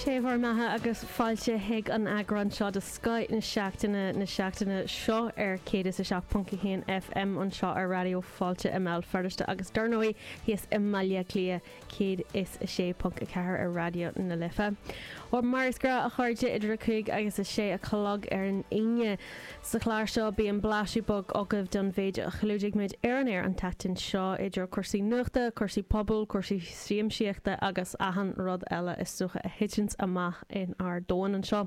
Sé bhur mbeatha agus fáilte chuig an eagrán seo de Scoth na Seachtaine na seachtaine seo ar 107.1 FM anseo ar Raidió Fáilte i mBéal Feirste agus dar ndóigh thíos i mBaile Átha Cliath 106.4 ar Raidió na Life. Ó mar is gnách a chairde idir a cúig agus a sé a chlog ar an Aoine. Sa chlár seo bíonn blaiseadh beag agaibh don mhéid a chlúdaigh muid ar an aer an tseachtain seo idir cúrsaí nuachta, cúrsaí pobail, cúrsaí siamsaíochta agus achan rud eile is dócha a thiteanns amach in ár domhain anseo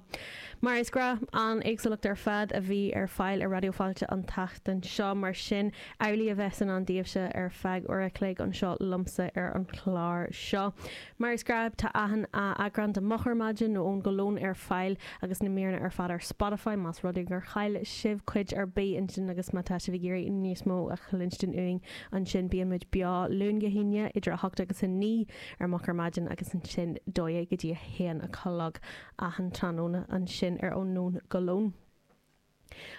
mar is gnách an éagsúlacht ar fad a bhí ar fáil ar Raidió Fáilte an tseachtain seo mar sin amhlaidh a bheas i ndán daoibhse ar feadh uair a chloig anseo liomsa ar an chlár seo mar is gnách tá achan eagrán de Moch ar Maidin nó Ó Nóin go Lón ar fáil agus na míreanna ar fad ar Spotify más rud é gur chaill sibh cuid ar bith ansin agus má tá sibh ag iarraidh níos mó a chluinstin uainn Ansin bíonn muid beo Luan go hAoine idir 8 agus 9 ar Moch ar Maidin agus ansin 12 go dtí 1 a chlog achan tráthnóna ansin ar Ó Nóin go Lón.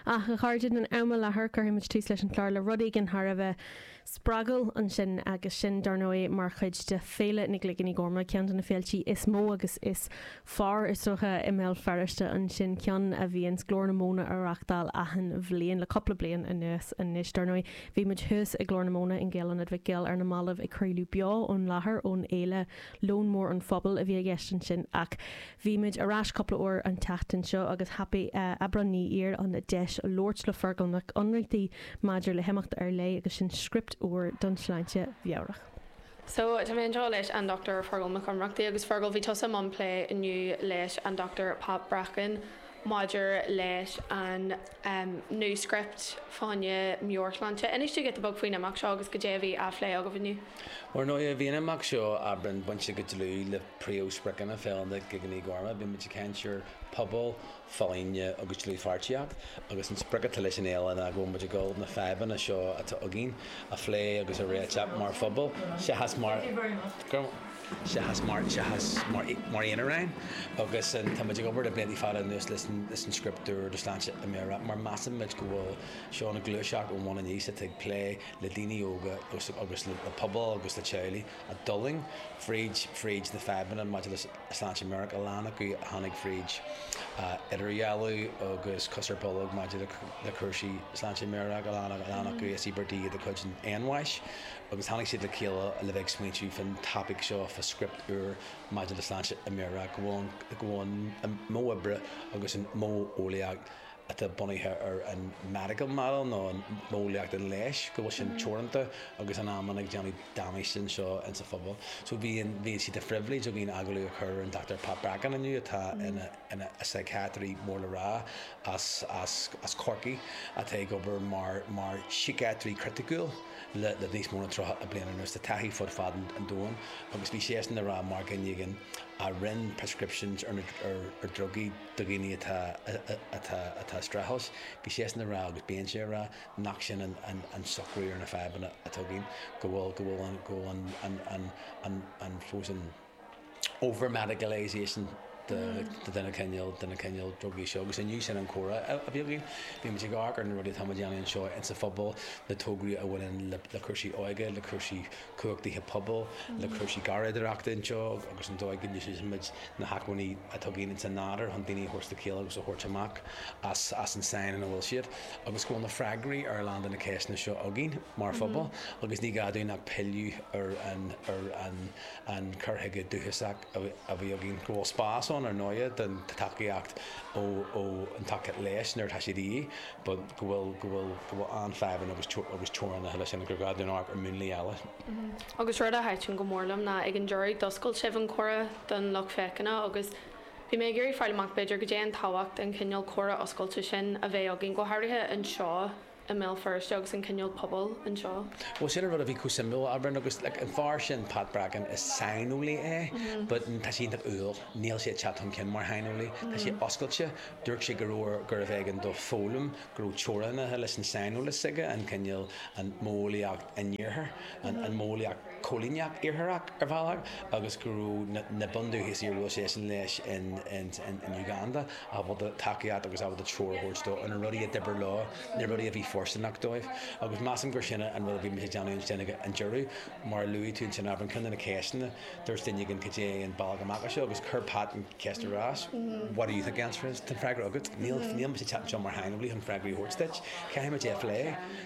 Ach a chairde, in am i láthair cuirfidh muid tús leis an chlár le rud éigin thar a bheith spreagúil ansin agus sin, dar ndóigh, mar chuid de Féile na gCloigíní Gorma, ceann de na féiltí is mó agus is fearr is dócha i mBéal Feirste ansin, ceann a bhíonns Glór na Móna á reachtáil achan bhliain le cupla bliain anuas anois. Dar ndóigh, bhí muid thuas i Glór na Móna in Gael-Ionad Mhic Goill ar na mallaibh ag craoladh beo ón láthair ón fhéile Lón Mór an Phobail a bhí i gceist ansin ach bhí muid ar ais cupla uair an tseachtain seo agus thapaigh Aibreán Ní Ír an deis labhairt le Feargal Mac Ionnrachtaigh maidir le himeacht ar leith agus sin script úr don tsláinte mheabhrach. So, tá mé anseo leis an Dr. Feargal Mac Ionnrachtaigh, agus Feargal, bhí tusa i mbun plé inniu leis an Dr. Pat Bracken maidir leis an New Script fá choinne meabhairshláinte. Inis domh giota beag faoin imeacht seo agus goidé a bhí á phlé agaibh inniu. Ar ndóigh, bhí an imeacht seo, Aibreán, bainte go dlúth le príomh-spriocanna Fhéile na gCloigíní Gorma. Bímid ag caint ar pobal folláine agus dlúthpháirtíocht, agus an sprioc atá leis an fhéile ná go bhfuil muid ag dul na fadhbanna seo atá againn a phlé agus a réiteach mar phobal seachas mar, seachas mar, seachas mar, mar aonaráin. Agus an, tá muid ag obair le blianta fada anuas leis an, leis an script úr do shláinte mheabhrach mar measann muid go bhfuil seo ina ghluaiseacht ón bhun aníos atá ag plé le daoine óga agus, agus le pobal agus le teaghlaigh a d'fhulaing fríd, fríd na fadhbanna maidir le sláinte mheabhrach, a lán acu a tháinig fríd idirdhealú agus cos ar bolg maidir le cúrsaí sláinte meabhrach, a lán acu is íobartaigh iad de chuid an fhéinbháis, agus tháinig siad le chéile le bheith ag smaointiú fán topaic seo, fán script úr maidir le sláinte mheabhrach, go bhfuil an modh oibre agus an modheolaíocht, atá bunaithe ar an medical model nó modheolaíocht an leighis go bhfuil sin teoranta agus in amanna ag déanamh damáiste anseo insa phobal. So bhí, bhí sé de phribhléid againn agallamh a chur ar an Dochtúir Pat Bracken inniu atá ina, ina shíciatraí mór le rá as, as, as Corcaigh atá ag obair mar, mar shíciatraí criticiúil le, le níos mó ná tríocha bliain anuas. Tá taithí fud fad an, an domhain agus bhí seisean a rá mar dhuine éigin a rinn prescriptions ar na, ar, ar drugaí, do dhaoine atá, atá, atá streachailt, bhí seisean a rá agus bíonn sé a rá nach sin an, an, an socrú ar na fadhbanna atá againn, go bhfuil, go bhfuil an, go bhfuil an, an, an, an, an, fós an over-medicalisation de, de na cineál, de na cineál drugaí seo agus inniu sin an comhrá a, a bhí againn. Bhí muid ag amharc ar na rudaí atá muid a dhéanamh anseo insa phobal, na tograí a bhaineann le, le cúrsaí óige, le cúrsaí cumhachtaithe pobail le cúrsaí garraíodóireacht ar ndóigh agus an dóigh go n-úsáideann muid na hacmhainní atá againn ins an nádur chun daoine a thabhairt le chéile agus a thabhairt amach as an sáinn ina bhfuil siad. Agus go bhfuil na freagraí ar a lán de na ceisteanna seo againn mar phobal agus ní gá dúinn ach pilleadh ar an cur chuige dúchasach a bhí againn, go bhfuil spás ann, ar ndóighe, don tacaíocht ó an tacaíocht leighis nuair atá siad de dhíth, but go bhfuil, go bhfuil, go bhfuil an-fhadhbanna agus, agus teorainneacha leis sin, gur gá dúinn amharc ar múnlaí eile. Agus rud a thaitn go mór liom ná ag an deireadh d'oscail sibh an comhrá don lucht féachana agus bhí mé ag iarraidh fáil amach b'fhéidir cad é an tábhacht an chineál comhrá oscailte sin a bheith againn go háirithe anseo i mBéal Feirste agus an cineál pobail anseo. Bhuel sin an rud a bhí chomh suimiúil, Aibreán, agus like an fear sin Pat Bracken, is saineolaí é but tá sé iontach umhal, níl sé ag teacht chun cinn mar shaineolaí, tá sé oscailte, dúirt sé go raibh, gurbh éigean dó foghlaim, go raibh teorainneacha leis an saineolas aige, an cineál, an mhodheolaíocht an iarthair, an mhodheolaíocht choilíneach iartharach ar bhealach agus go raibh na bundúchasaigh a bhuail seisean leis in Uganda, ábalta tacaíocht agus ábalta treoir a thabhairt dó ar na rudaí a d'oibir leo, na rudaí a bhí fóirsteanach dóibh. Agus measaim gur sin an rud a bhí muid ag déanamh ansin ag an deireadh. Mar a luaigh tú ansin, Aibreán, ceann de na ceisteanna, dúirt duine éigin cad é an bealach amach as seo agus chuir Pat an cheist ar ais, what do you think the answer is? Tá an freagra agat. Níl, níl mise ag teacht anseo mar shaineolaí chun freagraí a thabhairt duit. Caithfidh muid é a phlé.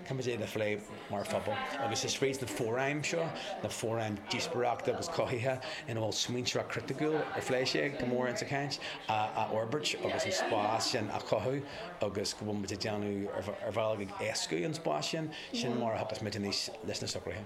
Caithfidh muid é a phlé. mar phobal. Agus is fríd na fóraim seo, na fóraim díospoireachta agus cothaithe ina bhfuil smaointeoireacht chriticiúil, ar phléigh sé go mór insa chaint, a fhorbairt agus an spás sin a chothú agus go bhfuil muid ag déanamh ar bhealach ag éascú an spáis sin, sin mar a thiocfas muid aníos leis na socruithe.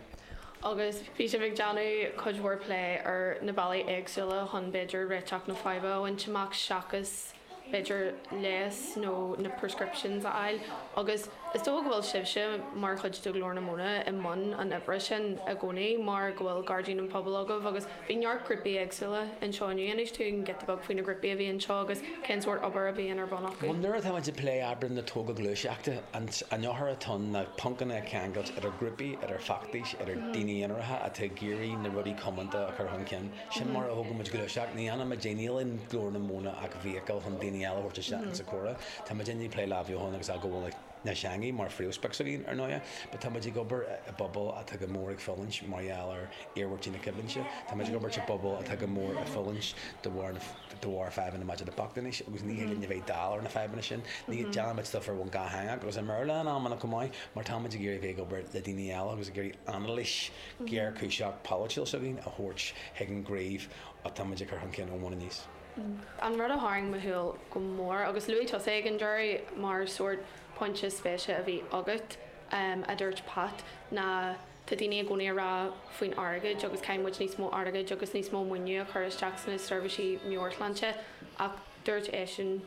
Agus bhí sibh ag déanamh cuid mhór plé ar na bealaí éagsúla chun b'fhéidir réiteach na faidhbe a bhaint amach seachas, b'fhéidir leigheas nó na prescriptions a fháil agus is dócha go bhfuil sibhse mar chuid de Ghlór na Móna i mbun an oibre sin i gcónaí mar go bhfuil Gairdín an Phobail agaibh agus bhí neart grúpaí éagsúla anseo inniu. Inis dúinn giota beag faoi na grúpaí a bhí anseo agus cén sórt obair a bhíonn ar bun acu? Nuair atá muid ag plé oibre na tógáil gluaiseachta, an eochair atá ann ná poncanna a cheangailt idir grúpaí, idir feachtais, idir daoine aonaracha atá ag iarraidh na rudaí comónta a chur chun cinn. Sin mar a thógann muid gluaiseacht, ní dhéanann muid é, níl in Glór na Móna ach vehicle chun daoine eile a thabhairt isteach insa comhrá. Tá muidinne ag plé le hathbheochan agus athghabháil na teanga mar phríomhsprioc s'againn, ar ndóighe, but tá muid ag obair i bpobal atá go mór ag fulaingt mar gheall ar iarmhairtí na coimhlinte, tá muid ag obair i bpobal atá go mór ag fulaingt de bharr na, de bharr fadhbanna maidir le bochtanas agus ní thig linn a bheith dall ar na fadhbanna sin. Ní, déanann muid stuif ar bhonn dhátheangach agus i mBéarla in amanna chomh maith mar tá muid ag iarraidh a bheith ag obair le daoine eile agus ag iarraidh anailís, géarchúiseach polaitiúil s'againn a thabhairt chuig an gcraobh atáimid ag cur chun cinn ón mbun aníos. An rud a tharraing mo shúil go mór, agus luaigh tusa é ag an deireadh mar sórt pointe spéise a bhí agat, a dúirt Pat, ná tá daoine i gcónaí ag rá faoin airgead agus caithfidh muid níos mó airgid agus níos mó maoiniú a chur isteach sna seirbhísí meabhairshláinte ach dúirt eisean,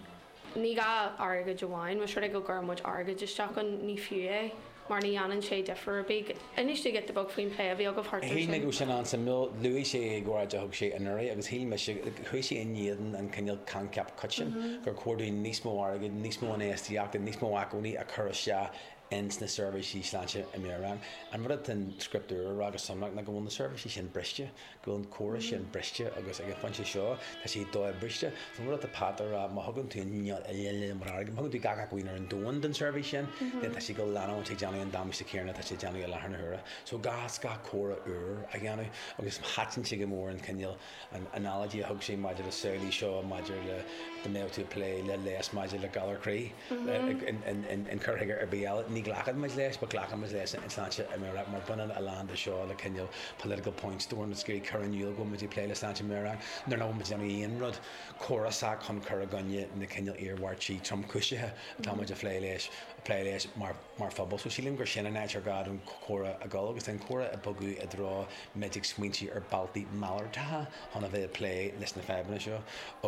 Ní gá airgead amháin, más rud é go gcuireann muid airgead isteach ann, ní fiú é, mar ní dhéanann sé difear ar bith. Inis dúinn giota beag faoin bplé a bhí agaibh thart air sin. Shíl mé go raibh sin an-suimiúil. Luaigh sé é ag óráid a thug sé anuraidh agus shíl mise, chuaigh sé in éadan an cineál coincheap coiteann gur chóir dúinn níos mó airgid, níos mó infheistíochta, níos mó acmhainní a chur isteach ins na seirbhísí sláinte meabhraí. An rud atá an Script Úr a rá go sonrach ná go bhfuil na seirbhísí sin briste. go bhfuil an córas sin briste agus ag an phointe seo tá sé do-bhriste. Is iomaí rud atá Pat ag rá, má thugann tú an inneall uile lena mbráid, má thugann tú gach acmhainn ar an domhan don tseirbhís sin, then tá sé ag dul a leanúint ag déanamh an damáiste céanna atá sé ag déanamh i láthair na huaire. So gá, is gá córas úr a dhéanamh agus thaitin sé go mór an cineál analogy a thug sé maidir le samhlaigh seo maidir le dá mbeadh tú ag plé le leigheas maidir le galar croí. an cur chuige ar bith eile. Ní ghlacann muid leis, but glacann muid leis an tsláinte mheabhrach, mar baineann a lán de seo le cineál political point scoring is ag cur in iúl go bhfuil muid ag plé le sláinte mheabhrach nuair nach bhfuil muid ag déanamh aon rud córasach chun cur i gcoinne na cineál iarmhairtí tromchúiseacha atá muid a phlé leis a phlé leis mar mar phobal. So sílim gur sin an áit ar gá don chomhrá a dhul agus an comhrá a bogadh i dtreo muid ag smaointiú ar bealtaí malartacha chun a bheith ag plé leis na fadhbanna seo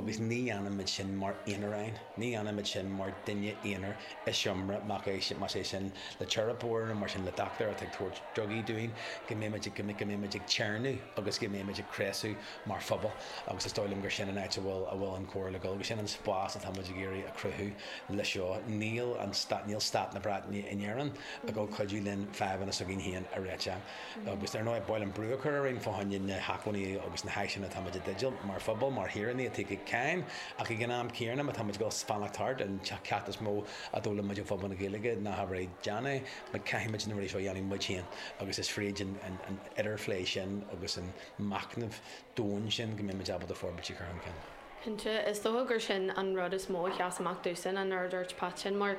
agus ní dhéanann muid sin mar aonaráin. Ní dhéanaimid sin mar duine aonair i seomra, más é sin le teiripeoir nó mar sin le dochtúir atá ag tabhairt drugaí dúinn, go mbeimid go mbeimid ag téarnamh agus go mbeimid ag cneasú mar phobal agus is dóigh liom gur sin an áit a bhfuil a bhfuil an comhrá le dul, sin an spás atáimid ag iarraidh a chruthú leis seo. Níl an níl stát na Breataine in Éirinn ag cuidiú linn fadhbanna s'againn féin a réiteach. Agus, ar ndóigh, bhuel an brú a chur orainn fá choinne na hacmhainní agus na háiseanna atáimid i dteideal, mar phobal, mar shaoránaigh atá ag íoc cáin, ach ag an am céanna, má táimid ag fanacht thart, an ceacht is mó a d'fhoghlaim muid ó phobal na Gaeilge ná habair é, déan é, nó caithfimid na rudaí seo a dhéanamh muid féin, agus is fríd an idirphlé sin agus an machnamh domhain sin go mbeimid ábalta forbairtí a chur chun cinn. Cinnte, is dócha gur sin an rud is mó a sheas amach domhsa, an rud a dúirt Pat, sin mar.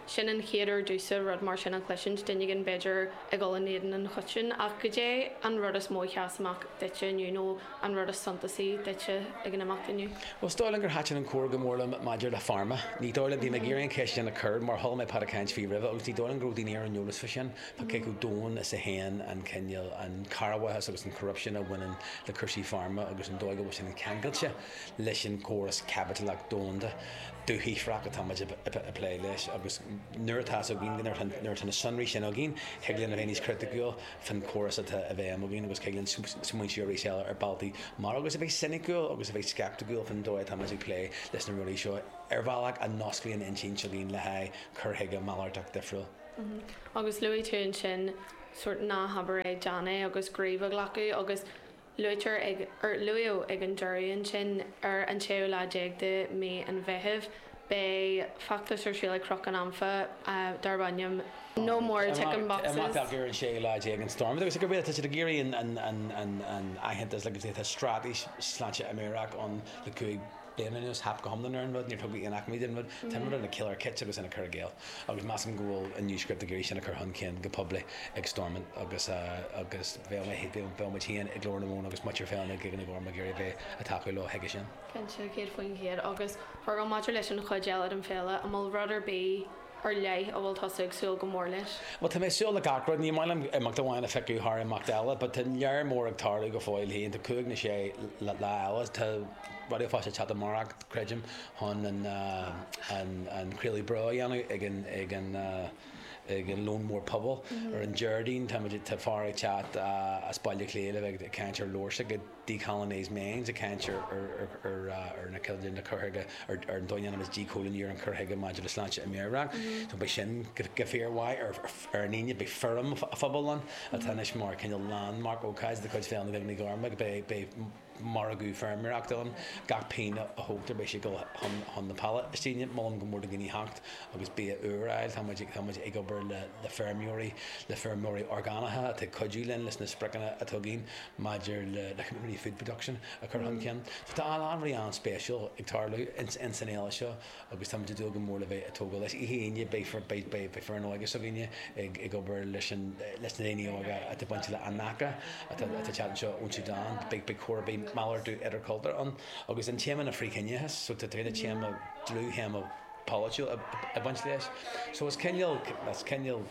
Sin an chéad uair domhsa rud mar sin a chloisint, duine éigin b'fhéidir ag dhul in éadan an choitinn, ach goidé an rud is mó a sheas amach duitse inniu nó an rud is suntasaí duitse ag an imeacht inniu? Bhuel, is dóigh liom gur thaitin an comhrá go mór liom maidir le pharma. Ní dóigh liom, bhí mé ag iarraidh an cheist sin a chur mar chuala mé Pat ag caint faoi roimhe agus ní dóigh liom go raibh daoine ar an eolas fá sin, fá cé chomh domhain is a théann an cineál, an cearrbhachas agus an corruption a bhaineann le cúrsaí pharma agus an dóigh go bhfuil sin ceangailte leis an gcóras caipitileach domhanda. dúshaothrach atáimid ag plé leis agus nuair atá fhios againn, nuair atá na sonraí sin againn, thig linn a bheith níos criticiúil faoin chóras atá i bhfeidhm againn agus thig linn smaointiú arís eile ar bealtaí mar agus a bheith soiniciúil agus a bheith sceipticiúil faoin dóigh atáimid ag plé leis na rudaí seo ar bhealach a n-osclaíonn intinn againn le haghaidh cur chuige malartach difriúil. Agus luaigh tú ansin sórt 'ná habair é, déan é' agus 'gníomh a ghlacadh' agus, Luaitear ag, or luaíodh ag an deireadh ansin, ar an tséú lá déag de mhí an Mheithimh, beidh feachtas ar siúl ag Cnoc an Anfa darb ainm No More Ticking Boxes. Iarrtar ar an séú lá déag in Stormont agus i gcomhréir le tá siad ag iarraidh an aitheantas agus atá straitéis sláinte meabhrach ann le cúig bliana anois theip go hiomlán ar an rud, níor tugadh aon acmhainní don rud. Tá an rud ina ciolar chiot agus ina cur i gcéill, agus measaim go bhfuil an New Script ag iarraidh sin a chur chun cinn go poiblí ag Stormont agus agus bheadh mé bheadh muid féin ag Glór na Móna agus muintir Féile na gCloigíní Gorma ag iarraidh a bheith a' tacú leo chuige sin. Cinnte, céad faoin chéad, agus chuirfeadh maidir leis an chuid eile den Féile, an bhfuil rud ar bith, ar leith a bhfuil tusa ag súil go mór leis? Bhuel, tá mé ag súil le gach rud. Ní maith liom imeacht amháin a phiocadh thar imeacht eile, but tá lear mór ag tarlú go fóill féin. Tá cúig nó sé lá eile, tá Raidió Fáilte teacht amárach, creidim, chun an craoladh beo a dhéanamh ag an lón mór pobail. Ar an Déardaoin, tá fear ag teacht as Baile Átha Cliath le bheith ag caint ar leabhar s'aige. 'Decolonised Minds', ag caint ar na ceardlanna cur chuige, ar an dóigh a ndéanaimid díchoilíniú ar an chur chuige maidir le sláinte mheabhrach. So beidh sin go fíormhaith ar an Aoine. Beidh fóram an phobail ann atá anois mar cineál landmark, ócáid de chuid Féile na gCloigíní Gorma. Beidh margadh feirmeoireachta ann, gach pingin a thógtar beidh sé ag dul chun na Palaistíne. Molaim go mór do dhaoine theacht agus bia úr a fháil. Tá muid ag obair le feirmeoirí, le feirmeoirí orgánacha atá ag cuidiú linn leis na spriocanna atá againn. maidir le company food production a chur chun cinn. So tá a lán rudaí an-spéisiúil ag tarlú ins an fhéile seo agus táimid ag dúil go mór le bheith ag tógáil leis. Oíche Aoine beidh foireann óige s'againne ag obair leis na daoine óga atá bainteach le Anaka atá ag teacht anseo ón Sudan. Beidh cór, beidh malartú idirchultúrtha ann agus an téama ná frith-chiníochas so tá fíor-théama, dlúth-théama polaitiúil ag baint leis. So is cineál, is cineál.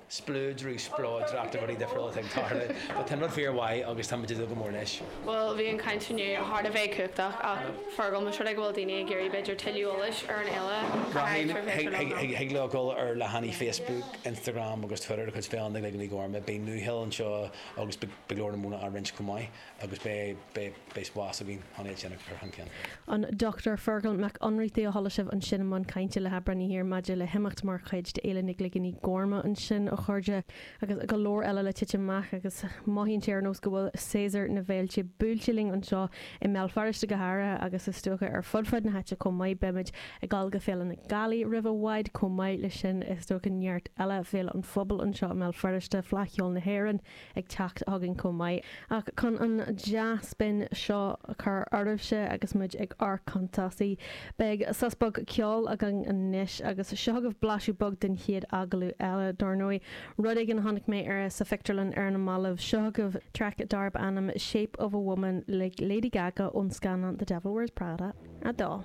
spleodrú, spleodracht, rudaí difriúla atá ag tarlú. But tá an rud fíor mhaith agus táimid ag dúil go mór leis. Bhuel, bhí an chaint inniu thar a bheith cumhachtach ach Fergal, más rud é go bhfuil daoine ag iarraidh b'fhéidir tuilleadh eolais ar an fhéile, cá háit ar féidir leo dul? Thig leo dul ar leathanaigh Facebook, Instagram agus Twitter de chuid Féile na gCloigíní Gorma. Beidh Nuashonrú anseo agus beidh go leor de na míreanna á roinnt chomh maith. Agus beidh spás againn chun é sin a chur chun cinn. An Dr Feargal Mac Ionnrachtaigh a chuala sibh ansin i mbun cainte le hAibreán Ní Thiar maidir le himeacht mar chuid de Fhéile na gCloigíní Gorma ansin, a chairde, agus go leor eile le titim amach agus mothaíonn sé ar nós go bhfuil séasúr na bhféilte buailte linn anseo i mBéal Feirste go háirithe agus is dócha ar fud fad na háite chomh maith. Beimid ag dul go Féile na Gealaí roimh i bhfad chomh maith leis sin, is dócha neart eile Féile an Phobail anseo i mBéal Feirste, Fleadh Cheoil na hÉireann, ag teacht chugainn chomh maith. Ach chun an dea-spion seo a chur oraibhse agus muid ag amharc chun tosaigh, beidh sos beag ceoil againn anois, agus seo agaibh blaiseadh beag den chéad agallamh eile, dár ndóigh, rud éigin a chonaic mé sa phictiúrlann ar na mallaibh. Seo agaibh traic darb ainm 'Shape of a Woman' le Lady Gaga ón scannán The Devil Wears Prada 2.